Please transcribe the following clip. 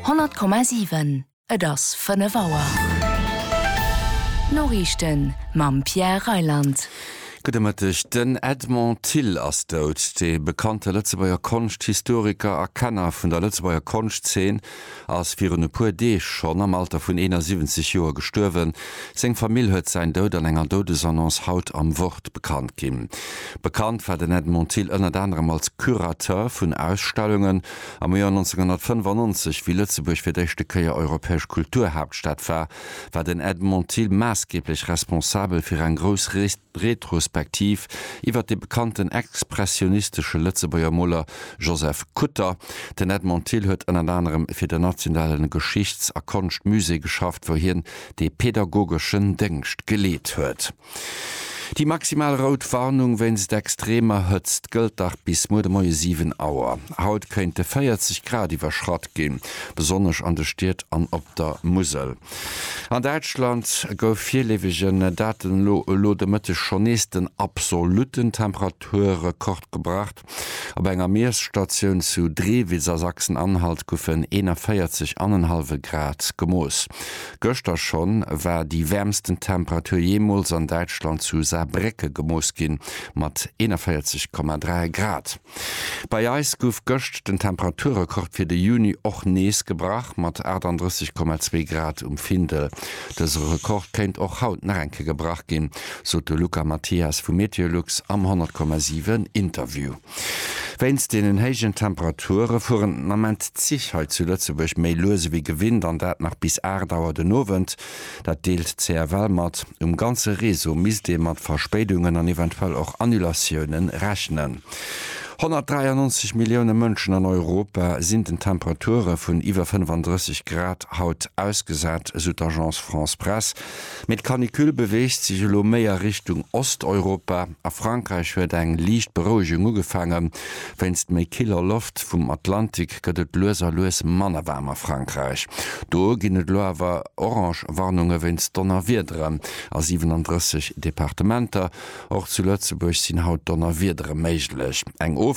100,7 Et ass 5 Auer. D'Noriichten mam Pierre Reyland. Gudde Mëtteg. Den Edmond Thill ass dout. De bekannte Lëtzebuerger Konschthistoriker a Kenner vun der Lëtzebuerger Konschtzeen ass virun e puer Deeg schonn am Alter vun 71 Joer gestuerwen. Seng Famill huet säin Doud an enger Doudesannonce haut am Wort bekannt ginn. Bekannt war den Edmond Thill ënnert anerem als Curateur vun Ausstellungen. Am Joer 1995, wéi Lëtzebuerg fir d'éischte Kéier europäesch Kulturhaaptstad war, war den Edmond Thill maassgeeblech responsabel fir eng grouss Retrospektiv iwwert de bekannten expressionistesche Lëtzebuerger Moler Joseph Kutter. Den Edmond Thill huet ënnert anerem fir den nationale Geschichts a Konschtmusée geschafft, wou hien de pädagogeschen Déngscht geleet huet. Déi maximal rout Warnung wéinst extremer Hëtzt gëllt dach bis muer de Moie 7 Auer. Haut kéinte 40 Grad iwwerschratt ginn, besonnesch an de Stied an op der Musel. An Däitschland gouf virleefegen Daten no elo de Mëtteg schonn nees den absolutten Temperaturrekord gebrach. Op enger Miesstatioun zu Drewitz a Sachsen-Anhalt goufen 41 anenhallwe Grad gemooss. Gëschter schonn war déi wäermsten Temperatur jeemools an Däitschland zu Saarbrécke gemooss ginn, mat 41,3 Grad. Bei eis gouf gëscht den Temperaturrekord fir de Juni och nees gebrach, mat 38,2 Grad um Findel. Dëse Rekord kéint och haut nach eng Kéier gebrach ginn, sot de Luca Mathias vu Meteolux am 100,7 Interview. Wéinst deenen héijen Temperature fueren den Ament d'Zich hei zu Lëtzebuerg méi lues ewéi gewinnt an dat nach bis 8 Auer den Owend. Dat deelt d'CFL mat. Um ganze Réseau misst ee mat Verspéidungen an eventuell och Annulatiounen rechnen. 193 Millioune Mënschen an Europa sinn den Temperature vun iwwer 35 Grad haut ausgesat, esou d'Agence France-Presse. Mee d'Canicule beweegt sech elo méi a Richtung Osteuropa. A Frankräich huet eng liicht Berouegung ugefaangen. Wéinst méi killer Loft vum Atlantik gëtt et lues a lues manner waarm a Frankräich. Do ginn et elo awer orange Warnunge wéinst Donnerwiederen. A 37 Departementer, och zu Lëtzebuerg, sinn haut Donnerwiedere méiglech. Eng Ofklimmung